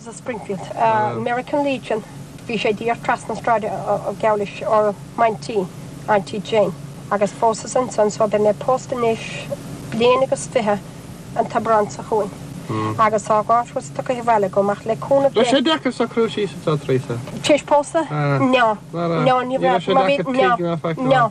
sa Springfield, American Legion, bhí sé díreach trasna na sráide geall leis óm aintín, Auntie Jane, agus phósas ansan so beidh mé pósta anois bliain agus fiche an t-Aibreán seo chugainn agus tá dhá thuras tugtha abhaile agam ach le cúnamh Dé, Bhí sé deacair socrú síos anseo, Theresa. Tar éis pósta? Nó, nó ní raibh, má bhí, nó, nó.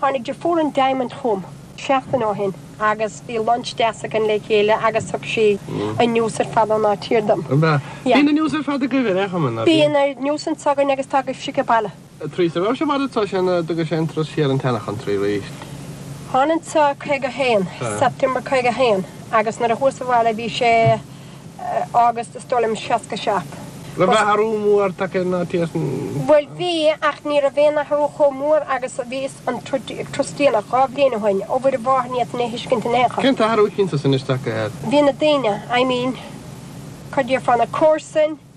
Tháinig deirfiúr an Diamond chugam seachtain ó shin agus bhí lunch deas againn le chéile agus thug sí an news ar fad ón áit thiar dom. Bíonn an news ar fad agaibh ar aon chuma, nach bíonn? Bíonn an news anso againn agus tá agaibhse age baile. Theresa raibh sé mar atá sé nó d'fhag sé an turas siar an tseanachantry arís? Thánag anso 51, September 51, agus nuair a chuas abhaile bhí sé. August is dóigh liom 67. Raibh athrú mór tagtha ar an áit ansan. Bhuel bhí, ach ní raibh aon athrú chomh mór agus a bhí san turas déanach dhá bhliain ó shoin, ó Mhuire Mháthair ní fhéadfainn é a thuiscint in aon chor. Cén t-athrú is suntasaí anois tagtha air. Bhí na daoine, I mean, cad a déarfá, na comharsain,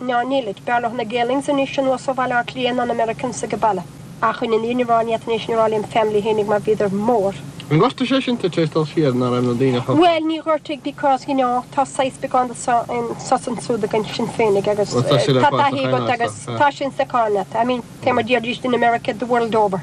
Ná nílid. B'fhearr leo na Gaelinns anois anuas ó Bhaile Átha Cliath ná na Americans age baile. Ach ina ndiaidh níor ann iad tar éis an Royal Family fhéinig mar bhíodar mór. Ar ghortaigh sé sin tar éis dul siar ná raibh na daoine chomh. Bhuel, níor ghortaigh because, you know, tá saghas beagán de anso is ansúd againn sin féinig agus tá taithí agat agus tá sin sa cháil leat. I mean, tá sé mar a deiridís in America the world over.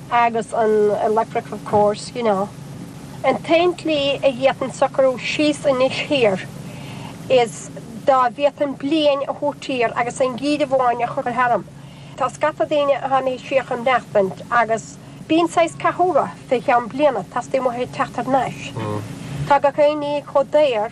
agus an electric of course, you know. An t-aon tslí a d'fhéadfainn socrú síos anois thiar is dá bhféadfainn bliain a thabhairt thiar agus aon gheimhreadh amháin a chur tharam. Tá scata daoine a théann siar chun maireachtaint agus bíonn saghas cathú orthu fé cheann bliana, teastaíonn uathu teacht thar n-ais. Tá gach aon ní chomh daor.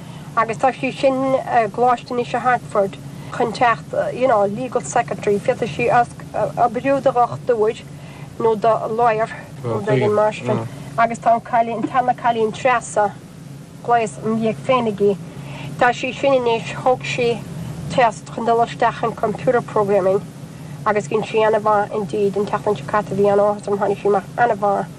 agus tá sí sin i gcoláiste anois i Hartford chun teacht you know legal secretary féadfaidh sí oibriú do dhochtúir nó do lawyer nó d'fhoireann maistreáin agus tá an cailín tá an cailín Treasa ghlaos im dhiaidh féinig í tá sí sin anois thóg sí test chun dul isteach in computer programming agus dhein sí ana-mhaith indeed an tseachtain seo caite bhí an-áthas orm tháinig sí amach ana-mhaith.